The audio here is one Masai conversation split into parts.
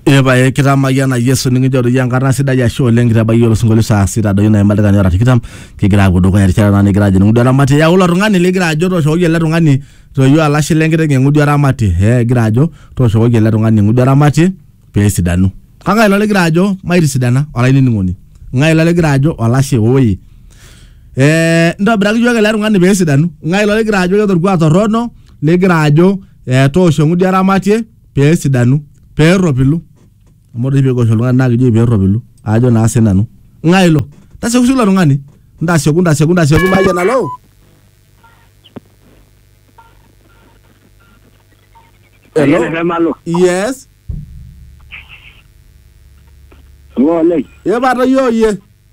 Epae kitamayiana Yesu nikinchoo doi enkata sidai ashe oleng kitabayie osinkolio saa sita doi naima dakikani ora tikitam kigira apuo dukuya erishata naa nikigira ajing ng'udu eramatie yau ilo tung'ani ligira ajo tooshokoki ele tung'ani toyio alashe lenkiteng eng'udu eramatie eh egira ajo tooshokoki ele tung'ani eng'udu eramatie peesidanu kang'ae ilo ligira ajo maitisidana olainining'oni ng'ae ilo ligira ajo olashe woi eh ntobiraki iyiok ele tung'ani peesidanu ng'ae ilo ligira ajo keeta orkuak torrono ligira ajo eh, toosho eng'udi eramatie pee esidanu pee erropilu amu ore oshi peekiwosh oltung'ani naa kijoki pee erropilu aajo naa sinanu ng'ae ilo tasioki ilo tung'ani ntasioku ntasioku ntasioku maayie nalo Hello? Eyiolo emalo. yes Ng'ole. ye pata iyooyie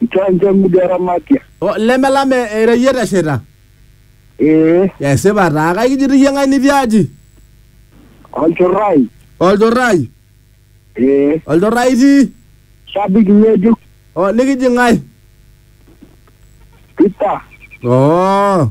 Nchanja ng'udi aramatia. O, lemelam e- eira iyie teshaita Ee, esipa taa kake kijito iyie ng'ae nitii aji olchorrai. olchorrai Ee, olchorrai itii shabiki ng'ejuk. o, likiji ng'ae Peter. oo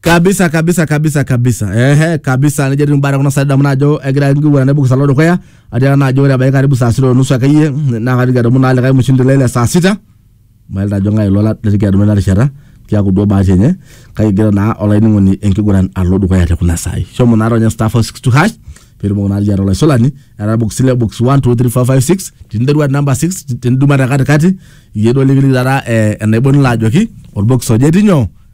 kabisa kabisa kabisa kabisa ehe kabisa nejo etii mbaa tekuna saai damu naajo egira enkiguran naibung'isa alo dukuya atiaka naajo ore ebaiki karibu saa sita onusu akeyie naa kaitoki adumu naa likae mushindi lai le saa sita mailita ajo ng'ae ilo latoki adumu ena rishata kiaku duo bahati enye kake egira naa olainining'oni enkiguran alo dukuya tekuna saai shomo naa ronya star 462 hash piitumoki naa liata olaisulani era box ile box 1 2 3 4 5 6 tiniterua te namba 6 tiniduma te katikati iyie duo likiliki taata eh, enaibon ilo ajoki orbox oje etii nyoo